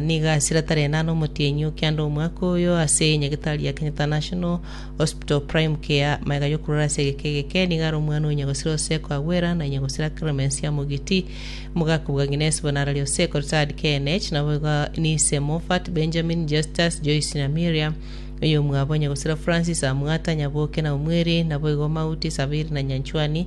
Nigo ase riata riane are omotienyi o kianda omwaka oyo ase nyagetari ya Kenya International Hospital Prime Care. Magega y'okorora ase egeka egeke nigo are omwana o nyagosira Oseko Agwera na nyagosira Clemence Amogiti, omogaka bwa Agnes Bonarari Oseko, retired KNH, nabo igo n'ise Moffat, Benjamin, Justus, Joyce na Miriam, oyomwabo nyagosira Francis Amwata, Nyaboke na Omweri, nabo igo Mauti, Sabiri na Nyanchwani,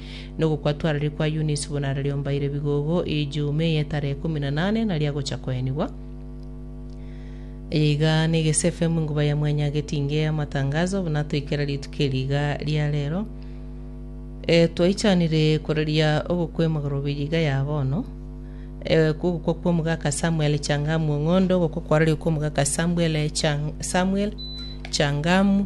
Nogokwa twararie kwa Eunice buna arariombaire bigogo Ijumaa eye etarehe ikomi na nane naria agocha koenigwa. Eye iga negese FM enguba ya mwanya agetinge amatangazo buna toikera rituko eri iga ria rero. E, twaichanire koraria ogokwa emagorobi iga ya bono. E, ogokwa kwa omogaka Samuel Changamu Ong'ondo, ogokwa kwarario kwa omogaka Samuel, Chang, Samuel Changamu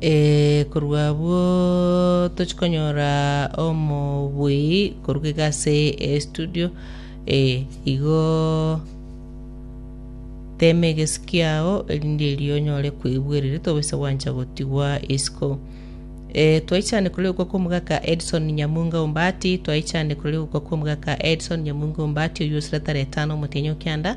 Eh, korwa abwo tochia konyora omobui koruga iga ase estudio eh, igo tema egesiki kiao erinde erio onyore koigwa erere tobase gwancha gotigwa isiko Eh, twaichane korwa egokwa kwa omogaka Edson Nyamunga Ombati, twaichane korwa egokwa kwa omogaka Edson Nyamunga Ombati, oyio osira tara etano omotienyi o Kianda,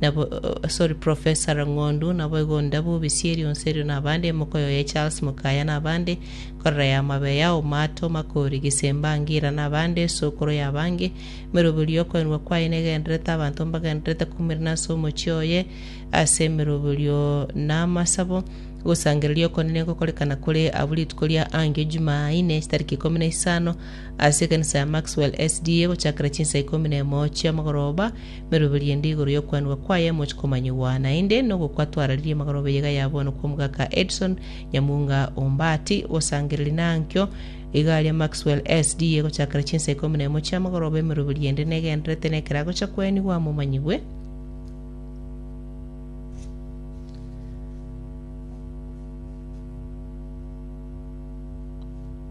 Nabo, sorry, Professor Rang'ondu, naboigo onde bobisia erionsi erio nabande, emoka oyo ya Charles Mukaya nabande, korera ya Mabe ya Omato, Makori, Gisemba, Ngira nabande, esokoro yabange, emeroberio y'okoenwa kwaye negendererete abanto mbagendererete koumerana ase omochie oye, ase emeroberio na amasabo, ogosangereria okone negokorekana kore abwo rituko ria angio Jumaa ine, chitariki ikomi na isano, ase ekanisa ya Maxwell SDA, gochakera chinsa ikomi na emo chiamagoroba, Meroberio ende igoro y'okwanigwa kwaye emoche komanyigwa, naende nogokwa twararirie magoroba eyega ya bono kw'omogaka Edson Nyamunga Ombati, osangereri na ankio iga aria Maxwell SD. Egochakera chinsa ikomi na emo chi'amagoroba emeroberio ende negendererete nekero agocha kwenigwa amomanyigwe.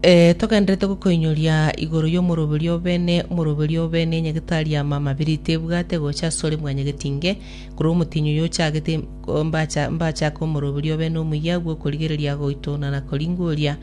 Eh, togenderete gokoinyoria igoro y'omoroberi obene, omoroberi obene, enyagetari ya mama biri tebwate gocha asore mwanyagetinge, korwa omotinyi oyo ochagete o- mbacha mbachake omoroberi obene omuya agwo okorigereria agoitona na koringoria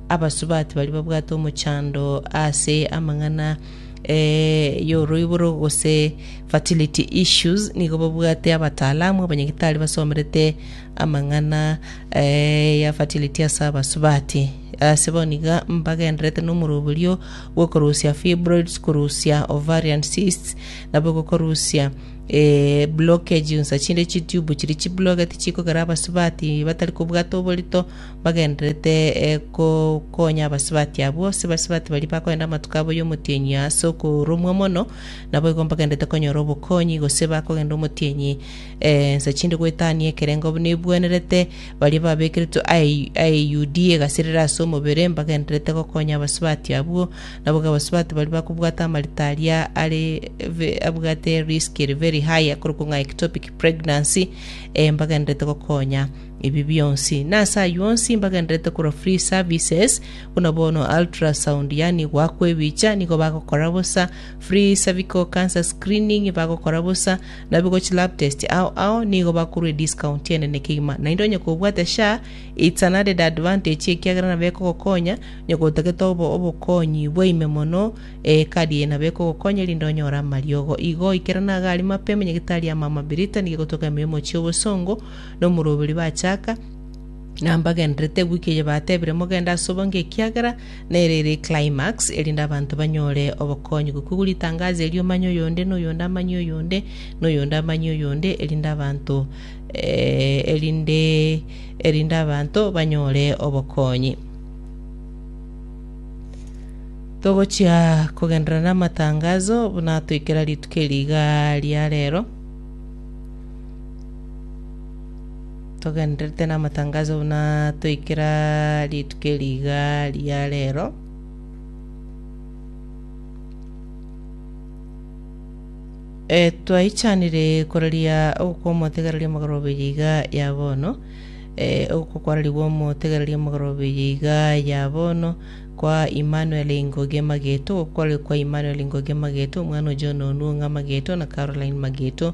abasubati baria babwate omochando ase amang'ana eh, y'oroiboro gose fertility issues nigo babwate abataalamu abanyagetari basomerete Amang'ana eh, ya fertility ase abasubati. Ase boniga mbagenderete nomoroberio bw'okorusia fibroids, korusia ovarian cysts, nabo gokorusia eh, blockage onsa chinde chitube chiri chiblogeti chikogera abasubati batari kobwata oborito bagenderete eh, kokonya abasubati abwo. Ase basubati baria bakoenda amatuko abo y'omotienyi ase okoromwa mono, nabo igo mbagenderete konyora obokonyi, gose bakogenda omotienyi Ensa chinde goetania ekerengo buna ebwenerete, baria babekeretwe aeyudia egasirera ase omobere mbagendererete gokonya abasubati abwo. Naboigo abasubati baria bakobwata amarita aria are abwate risk ere very high akorokwa ng'a ectopic pregnancy, eh, mbagendererete gokonya ebi bionsi. Nase ayio onsi mbagendererete korwa free services, buna bono ultrasound yaani goakwa ebicha nigo bagokora bosa, free cervical cancer screening bagokora bosa, Nabigo chilab test ao ao nigo bakorwa ediscount enene kegima, naende onye kobwate sha, it's an added advantage ekiagera nabo ekogokonya, onye kotagete obo obokonyi bwaime mono, eh, ekadi eye nabo ekogokonya erinde onyore amariogo. Igo oikerane iga aria mapema, nyagitari ama ama Brittany gegotoka emeremo chia obosongo, na omoroberi bachaka, na mbagenderete gwika erio batebire mogende ase obonge ekiagera nere ere eclimax, erinde abanto banyore obokonyi. Gokigwa ritangazo erio omanye oyonde na oyonde amanye oyonde na oyonde amanye oyonde erinde abanto eh, erinde erinde abanto banyore obokonyi. Togochia kogenderera namatangazo buna toikera rituko eri iga ria rero. Togendererete namatangaso buna toikera rituko eri iga ria rero. E, twaichanire koraria ogokwa omotegereri ri'omogoroberia iga ya bono. E, ogokwa kwararigwe omotegereri ri'omogoroberia iga ya bono kwa Emmanuel Ngoge Mageto, ogokwa kwararigwe kwa Emmanuel Ngoge Mageto, omwana o John Onuonga Mageto na Caroline Mageto,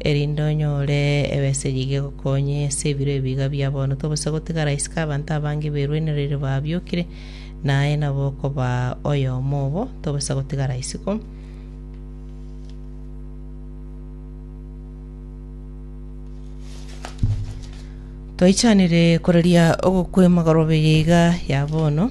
erinde onyore ebesegi gegokonye ase ebiro ebiiga biaboronto, gose gotigara isiko abanto abange beruanereire babiokire, na aye nabo okoba oyomo obo, tobasa gotigara isiko. Twaichanire koraria ogokwema korobeye iga ya bono.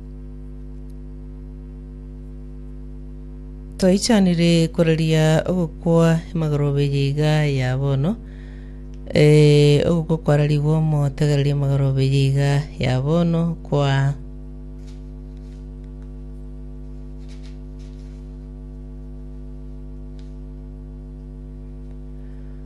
Toichanire koraria ogokwa emagorobe eye iga ya bono. Eh, ogokwa kwararigwe omotegereria emagorobe eye iga ya bono kwa